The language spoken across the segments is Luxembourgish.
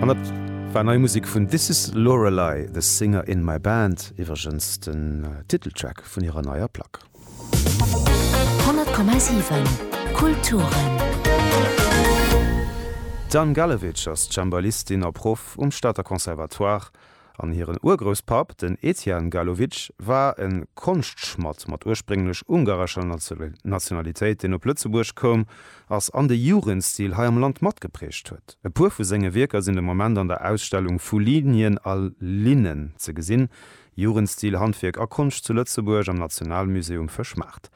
An dat war nei Musek vun This Is Lorelei, The Singer In My Band, iwwregens den Titeltrack vun hirer neier Plack. 100,7 Kulturen. D'Anne Gallewitsch ass Cembalistin a Proff um Stater Conservatoire An hiren Urgrousspapp, den Etienne Galovics, war e Konschtschmadd mat ursprénglech ungarescher Nationalitéit, deen op Lëtzebuerg koum ass an de Jugendstil hei am Land matgeprägt huet. E puer vu senge Wierker sinn de Moment an der Ausstellung Vu Linien a Linnen ze gesinn, Jugendstil, Handwierk a Konscht zu Lëtzebuerg am Nationalmusée um Fëschmaart.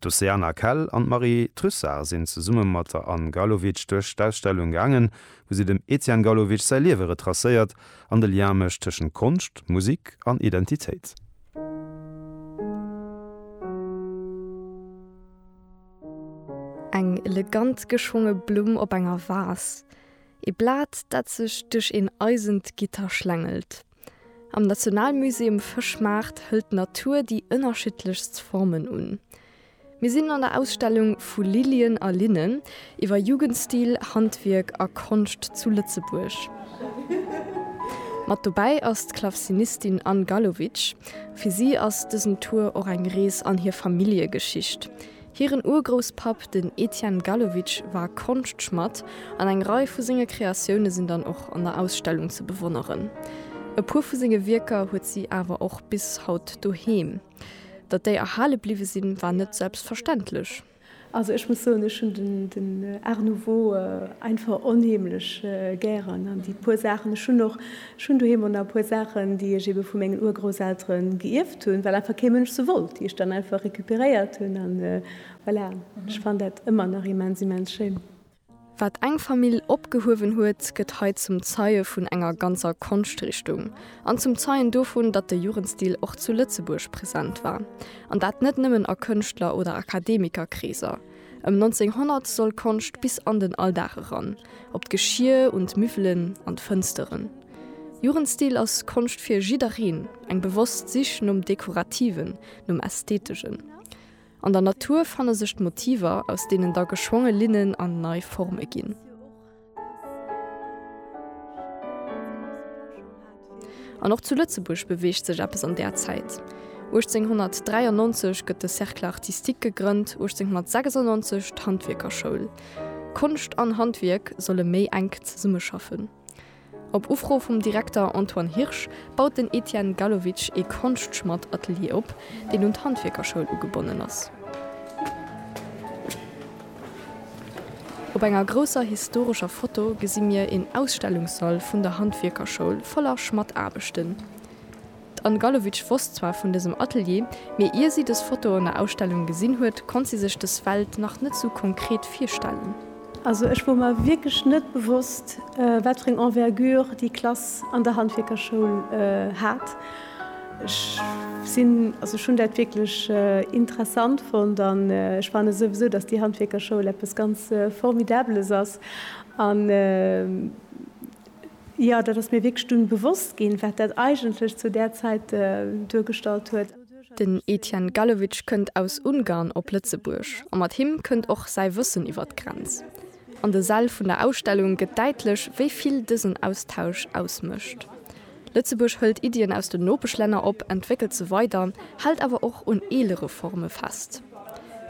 D'Oceana Kell an d'Marie Trussart sinn zesumme mat der Anne Galovics duerch d'Ausstellung gaangen, wou si dem Etienne Galovics säi Liewe retracéiert, An de Lien mécht tëschent Konscht, Musik an Identitéit. Eng elegant geschwonge Blumm op enger Vas. E Blat, dat sech duerch een eisent Gitter schlängelt. Am Nationalmusée um Fëschmaart hëlt d'Natur déi ënnerschiddlechst Formen un. Mir sinn an der Ausstellung Vu Lilien a Linnen, iwwer Jugendstil, Handwierk a Konscht zu Lëtzebuerg. Mat dobäi ass d'Klavzinistin Anne Gallowitsch. Fir si ass dësen Tour och eng Rees an hir Familljegeschicht. Hiren Urgrousspapp, den Etienne Gallowitsch, war Konschtschmadd an eng Rei vu senge Kreatioune sinn dann och an der Ausstellung ze bewonneren. E puer vu senge Wierker huet si awer och bis haut doheem. Datt déi erhale bliwwe sinn, war net selbstverständlech. Also ech muss soen, ech hunn den Art nouveau einfach onheemlech gären an déi puer Saachen, ech hunn och, ech hunn doheem och nach e puer Saachen, déi ech eebe vu mengen Urgrousseltere geierft hunn, well einfach kee Mënsch se wollt, déi ech dann einfach recuperéiert hunn. An voilà, ech fannen dat ëmmer nach immens, immens schéin. Wat eng Famill opgehuewen huet, gëtt hei zum Zeie vun enger ganzer Konschtrichtung an zum Zeien dovun, datt de Jugendstil och zu Lëtzebuerg present war, an dat net nëmmen a Kënschtler oder Akademikerkreeser. Ëm 1900 soll Konscht bis an den Alldag eran, op d'Geschier, un d'Müffelen, an d'Fënsteren. Jugendstil ass Konscht fir jiddereen, eng bewosst Sich nom Dekorativen, nom Ästhetegen. An der Natur fanne sech d'Motiver, aus deenen da geschwonge Linnen an nei Forme ginn. An och zu Lëtzebuerg beweegt sech eppes an där Zäit. 1893 gëtt de Cercle artistique gegrënnt, 1896 d'Handwierkerschoul. Konscht an Handwierk solle méi enk zesummeschaffen. Op Ufro vum Direkter Antoine Hirsch baut den Etienne Gallowitsch ee Konschtschmadd-Atelier op, deen un d'Handwierkerschoul ugebonnen ass. Op enger grousser historescher Foto gesi mir een Ausstellungssall vun der Handwierkerschoul voller Schmaddaarbechten. D'Anne Gallowitsch wosst zwar vun dësem Atelier, mee ier si dës Foto an der Ausstellung gesinn huet, konnt si sech dës Welt nach net sou konkret virstellen. Also ech wor mer wierklech net bewosst, wat fir eng Envergure déi Klass an der Handwierkerschoul hat. Ech sinn, also ech hunn dat wierklech interessant fonnt an ech fanne souwisou, dass déi Handwierkerschoul eppes ganz Formidabeles ass. Jo, dat ass mir wierklech dunn bewosst ginn, wat dat eigentlech zu där Zäit duergestallt huet. Den Etienne Gallewitsch kënnt aus Ungarn op Lëtzebuerg a mat him kënnt och säi Wëssen iwwer d'Grenz. An de Säll vun der Ausstellung gëtt däitlech, wéi vill dësen Austausch ausmécht. Lëtzebuerg hëlt Iddien aus den Nopeschlänner op, entwéckelt se weider, hält awer och un eelere Forme fest.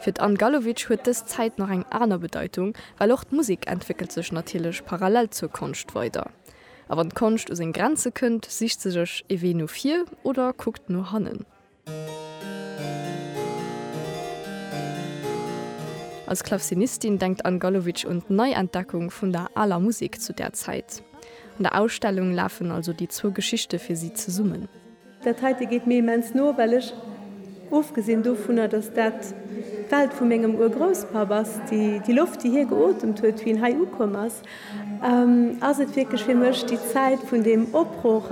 Fir d'Anne Gallowitsch huet dës Zäit nach eng aner Bedeitung, well och d'Musek entwéckelt sech natierlech parallel zur Konscht weider. A wann d'Konscht u seng Grenze kënnt, sicht se sech ee Wee no vir oder kuckt no hannen. Als Klavcinistin denkt d'Anne Gallowitsch un d'Neientdeckung vun der aler Musek zu där Zäit. An der Ausstellung lafen also déi zwou Geschichte fir si zesummen. Dat heite geet mir immens no, well ech, ofgesinn dovunner, dass dat d'Welt vu mengem Urgrousspapp ass, déi Loft, déi hie geotemt huet, wéi en hei ukomm ass, ass et wierklech fir mech déi Zäit vun deem Opbroch,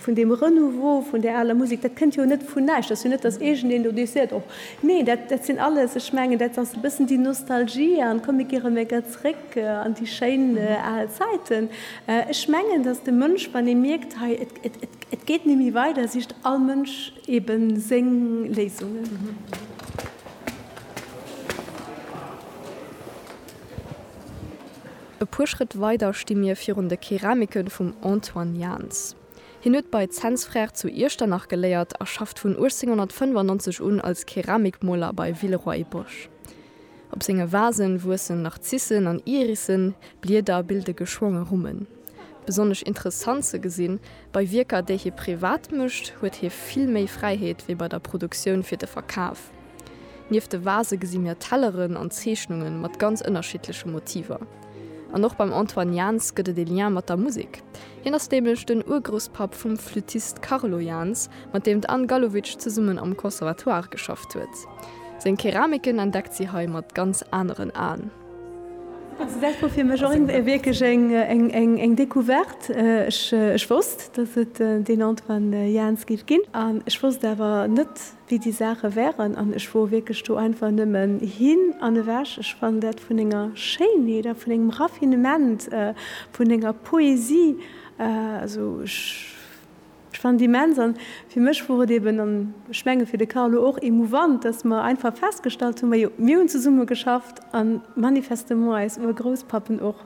vun deem Renouveau vun där aler Musek. Dat kënnt jo net vun näischt. Dat ass jo net, dass iergendeen do deeg seet, och nee, dat sinn alles, ech mengen, dat ass e bëssen déi Nostalgie an d'Komm, mir gieren emol gär zréck an déi schéin al Zäiten. Ech mengen, dass de Mënsch, wann e mierkt, hei, Et geet némmi weider, sicht all Mënsch ebe séng Léisungen. E puer Schrëtt weider sti mir virun de Keramike vum Antoine Jaans. Hien huet bei Zens Frères zu Iechternach geléiert a schafft vun 1895 un als Keramikmoler bei Villeroy-Boch. Op senge Vasen wuessen Narzissen an Irissen, Blieder bilde geschwonge Rummen. Besonnesch interessant ze gesinn, bei Wierker, déi hie privat mécht, huet hie vill méi Fräiheet wéi bei der Produktioun fir de Verkaf. Nieft de Vase gesi mir Telleren an Zeechnunge mat ganz ënnerschiddleche Motiver. An och beim Antoine Jans gëtt et e Lien mat der Musek. Hien ass nämlech den Urgrousspapp vum Flüttist Carlo Jans, mat deem d'Anne Gallowitsch zesummen am Conservatoire geschafft huet. Seng Keramiken entdeckt si hei mat ganz aneren Aen. Also dat war fir mech och wierklech eng Decouverte. Ech wosst, datt et deen Antoine Jaans géif ginn an ech wosst awer net, wéi déi Saache wären an ech wor wierklech do einfach nëmmen hin an ewech. Ech fannen dat vun enger Schéinheet a vun engem Raffinement, vun enger Poesie, also ech. Ech fannen et immens, an fir mech wor et eben, an ech mengen fir de Carlo och, emouvant, dass mer einfach festgestallt hunn, majo, mir hunn zesumme geschafft, a manifestement eis Urgrousspappen och.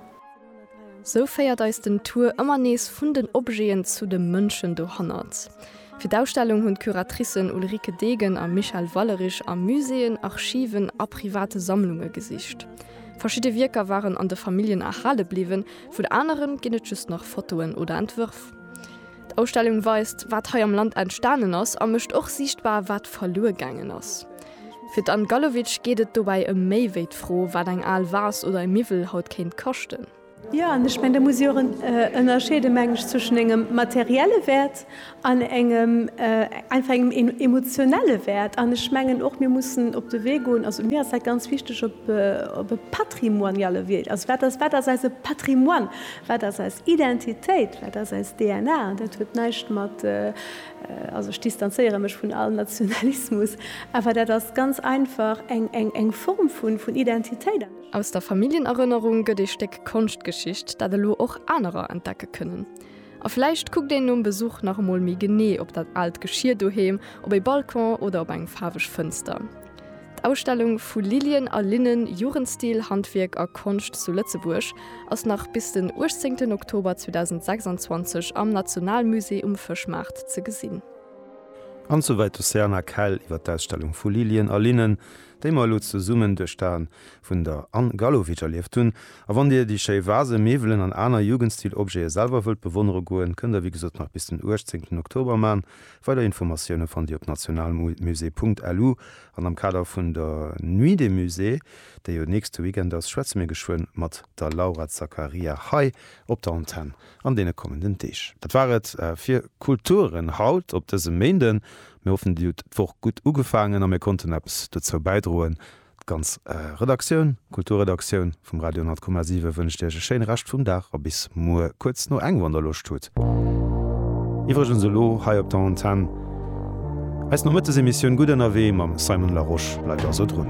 Sou féiert eis den Tour ëmmer nees vun den Objeten zu de Mënschen dohannert. Fir d'Ausstellung hunn d'Curatricen Ulrike Degen a Michèle Wallerich a Muséeën, Archiven a private Sammlunge gesicht. Verschidde Wierker waren an de Familljen erhale bliwwen, vun aneren ginn et just nach Fotoen oder Entwërf. D'Ausstellung weist, wat hei am Land entstanen ass a mécht och siichtbar, wat verluer gaangen ass. Fir d'Anne Gallowitsch geet et dobäi ëm méi wéi d'Fro, wat eng al Vase oder e Miwwel haut kéint kaschten. Jo, an ech mengen, da muss ee jo och ënnerscheede meng ech zwëschen engem materielle Wäert an engem einfach engem emotionelle Wäert. An ech mengen och, mir mussen op de Wee goen, also mir ass dat ganz wichteg, op e patrimoniale Wee, also wat ass eise Patrimoine? Wat ass eis Identitéit? Wat ass eis DNA? An dat huet näischt mat, also ech distanzéiere mech vun all Nationalismus, awer dat ass ganz einfach eng Form vun Identitéit. Aus der Familljenerënnerung gëtt ee Stéck Konschtgeschicht, dat elo och anerer entdecke kënnen. A vläicht kuckt een nom Besuch nach emol méi genee op dat aalt Geschier doheem, op ee Balcon oder op eng faarweg Fënster. D'Ausstellung Vu Lilien a Linnen, Jugendstil, Handwierk a Konscht zu Lëtzebuerg ass nach bis den 18 Oktober 2026 am Nationalmusée um Fëschmaart ze gesinn. An souwäit d'Océana Kell iwwer d'Ausstellung Vu Lilien a Linnen, déi mer elo zesummen duerch d'Aen vun der Anne Gallowitsch erlieft hunn. A wann Dir déi schéi Vasen, Miwwelen an aner Jugendstil-Objete selwer wëllt bewonnere goen, kënnt der wéi gesot nach bis den 18 Oktober man. Weider Informatioune fannt Dir op nationalmusée.lu an am Kader vun der Nuit des Musées, déi jo nächste Weekend ass, schwätze mir geschwënn mat der Laura Zaccaria hei op der Antenn an deene kommenden Deeg. Dat war et fir Kulturen haut op dësem Méinden. Mir hoffen, Dir hutt d'Woch gutt ugefaangen a mir konnten eppes dozou bäidroen, D'ganz Redaktioun, Kulturredaktioun, vum Radio 10,7 wënscht iech e schéine Rescht vum Dag a bis muer kuerz no eng, wann der Loscht hutt. Iwwregens elo hei op der Antenn eis Nomëttesemissioun Gutt ënnerwee mam Simon Larosche. Bleift also drun.